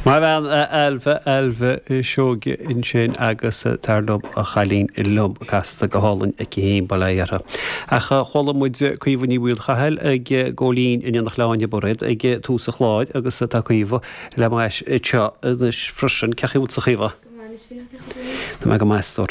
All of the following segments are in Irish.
Maith an bhean a Ailbhe, Ailbhe Seoige ansin agus, tar liom, a chailín liom casta go hálainn aici féin, bail ó Dhia uirthi. Ach chuala muid Caoimhe Ní Mhaolchathail ag gabháil fhoinn in éineacht le hÁine Mairéad ag tús an chláir agus tá Caoimhe le m'ais anseo anois freisin. Cé chaoi a bhfuil tusa a Chaoimhe? Tá mé go maith, a stór.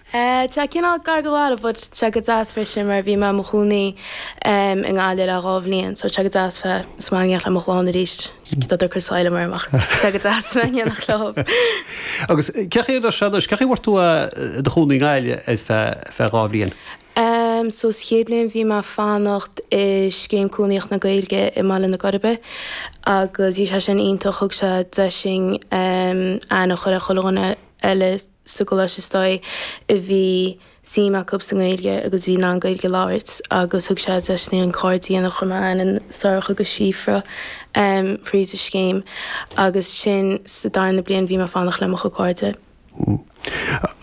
Tá sé cineál gar go leor, but tá sé go deas freisin mar bhí mé i mo chónaí i nGaillimh le dhá bhliain so tá sé go deas bheith sa mbaile le mo chlann arís, cé tá cur sáile orm ach tá sé go deas bheith in éineacht leo. Agus cé chaoi a raibh sé anois, cé chaoi a bhfuair tú i do chónaí i nGaillimh ar feadh dhá bhliain? So sa chéad bhliain bhí mé ag fanacht i Scéim Cónaíocht na Gaeilge i mBaile na Coiribe agus bhí sé sin iontach, thug sé deis dúinn aithne a chur ar chuile dhuine eile, sa gcoláiste istigh a bhí suim acu sa nGaeilge agus bhí in ann Gaeilge a labhairt agus thug sé deis dúinn cairde a dhéanamh, chuir mé aithne ar Sorcha agus Síofra thríd an scéim agus ansin sa darna bliain bhí mé ag fanacht le mo chuid cairde.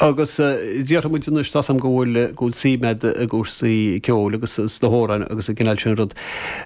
Agus déarfaidh muid anois tá a fhios agam go bhfuil suim agat i gcúrsaí ceoil agus sna hamhráin agus an cineál sin rud.